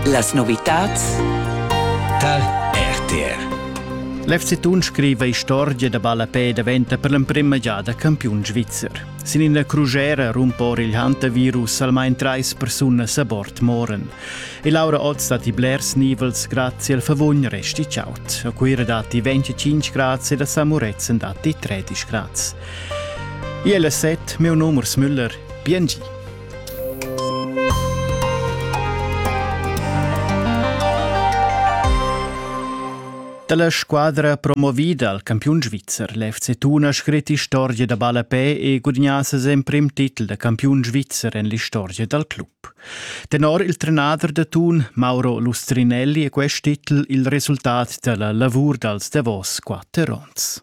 Las novitads tar RTR. L'FC Thun scriva istorgia da ballapè daventa per l'emprima giada campiun svizzer. Sin ina crugera rumpa or il hantavirus almain trais persunas a bord moren. E Laura Oz dat i blers nivels grazie al favugn resti ciaut. A Cuira datti 25 grazie e da San Muretzen datti 13 grazie. Iela set, meu numers Müller, Biengi. Dalla squadra promovida al campiun svizzer l'FC Tuna scrit istorgia da ballapè e gudagnà ses emprim titel da campiun svizzer en l'istorgia dal club. Tenor il trenader da Tun, Mauro Lustrinelli, è quest titel il resultat dalla lavur dals davos quatter onns.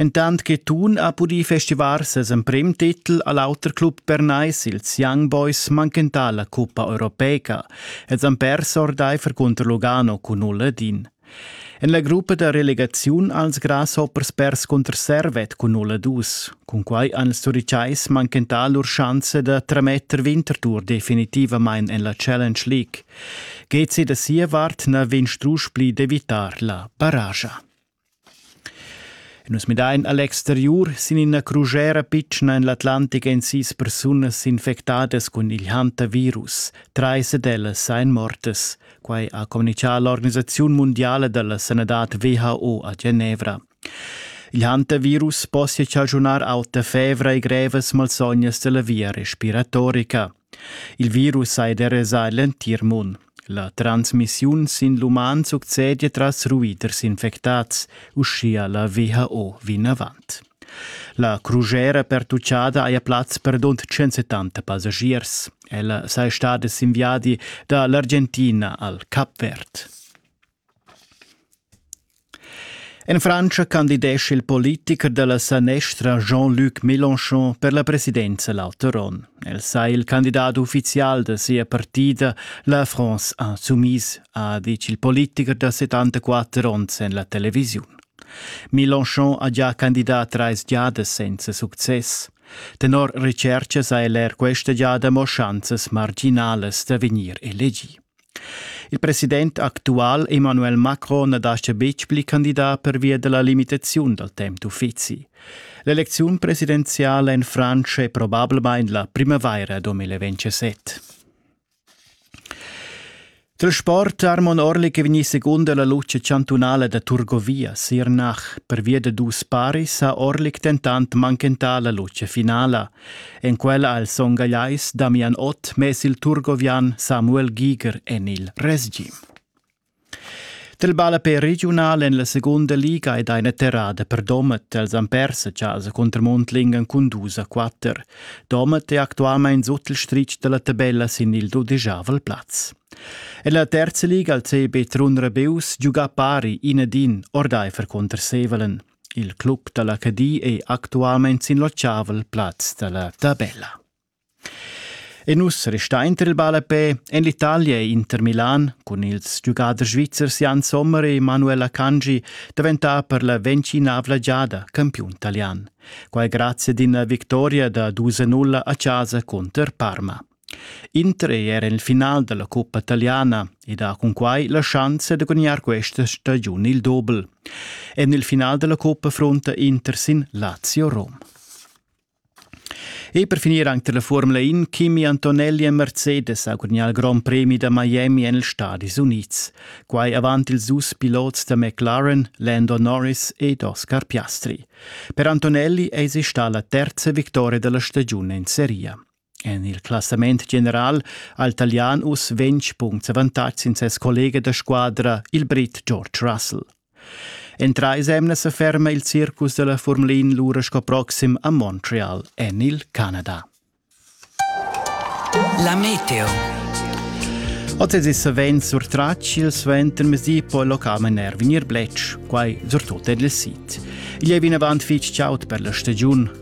Entant che Thun ha pudì festivar ses emprim titel a l'auter club bernais, ils Young Boys, manchentà la cuppa europeica. Els han pers ordaifer cunter Lugano cun null ed in. En la gruppa da relegaziun als Grasshoppers pers cunter Servet cun null ed dus. Cunquai han ils Turitschais manchentà lur schanza da trametter Winterthur definitivamain en la Challenge League. Gezi da sia vart na vegn strusch pli d'evitar la paraja. Nus midain a l'exteriur sin ina crujera pitschna en l'Atlantic èn sis persunas infectadas cun il hantavirus. Trais ed ellas èn mortas. Quai ha communitgà l'organisaziun mundiala da la sanadad WHO a Genevra. Il hantavirus possia chaschunar auta fevra e grevas malsognas dalla via respiratorica. Il virus ha derasà l'entir mund. La transmissiun sin l'uman succede tras ruiders infectads, uschia la WHO vinavant. La crugera pertuccada haja plaz per dont 170 passagiers. Ella saja stada sin viadi da l'Argentina al Cap Verd. En Frantscha candidescha il politicher da la sanestra Jean-Luc Mélenchon per la presidenza l'auter onn. El sai il candidat uffizial da sia partida, la France Insoumise, ha ditg il politicher da 74 onns en la televisiun. Mélenchon ha già candidà trais giadas senza success. Tenor recerchas ha el er questa giada mo schanzas marginalas da vegnir elegì. Il president actual Emmanuel Macron na dastga betg pli candidar pervia da la limitaziun dal temp d'uffizi. L'elecziun presidenziala en Frantscha è probablamain la primavaira 2027. Dal sport Armon Orlik è vegnì secunda la luce chantunala da Turgovia Sirnach. Pervia da dus paris ha Orlik dentant manchentà la luce finala. En quella al son gagliais Damian Ott mess il turgovian Samuel Giger en il resgim. Del ballapé regiunal en la segunda liga ed eine terrada per Domet els han pers a casa contra Mondlingen cun dus a quatter. Domet è actualment sut il stritg della tabella sin il dudegiavel plaz. En la terza liga al CB Trun Rebeus giuga pari inedin ordaifer conter Sevelen. Il club dalla Cadi ei actualmein sin l'otschavel plaz dalla tabella. E nus resta inter il ballapè en l'Italia e Inter Milan cun ils giugaders svizzers Jan Sommer e Manuela Cangi daventà per la ventginavla giada campiun talian. Quai grazie ad una vittoria da 2-0 a casa contro Parma. Inter ei era il final dalla cuppa taliana ed ha cunquai la schanza da gudignar questa stagiun il dobel. En il final dalla cuppa frunta Inter sin Lazio-Rom. E per finir anche la Formula In, Kimi Antonelli e Mercedes ha gudignato il Grand Premi da Miami en il Stadis Unids. Quai avant ils dus pilots da McLaren, Lando Norris ed Oscar Piastri. Per Antonelli eis sta la terza victoria della stagiun in seria. En il classament general ha il talian uss ventg punts avantatg sin ses collega da squadra, il brit George Russell. En trais emnas sa ferma il circus da la Formulin lura sco proxim a Montreal en il Canada. La meteo. Oz è savens surtratg il suentermezdi po il local er vegnir bletsch, quai surtut en il sit. Igl è vinavant fitg chaud per la stagiun,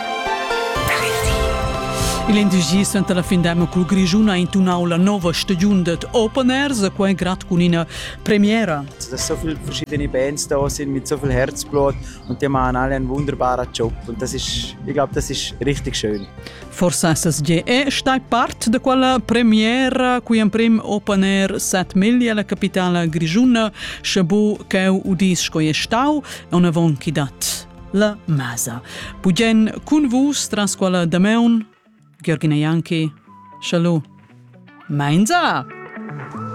Il indigi suenter la fin d'emma cul Grischun ha intunau la nova stagiun dad Open Air, quai grad cun ina premiera. Da so viele verschiedene Bands da sind mit so viel Herzblut und die machen alle einen wunderbaren Job und das ist, ich glaube, das ist richtig schön. Forsa SSGE stai part da quella premiera qui emprim Open Air set miglia la capitala grischuna, sche bu cheu udis sco è stau, on avon chi dat. la masa. Bugen cun vus tras quella Dameun, Georgina Janki, Schalu. Meinsa!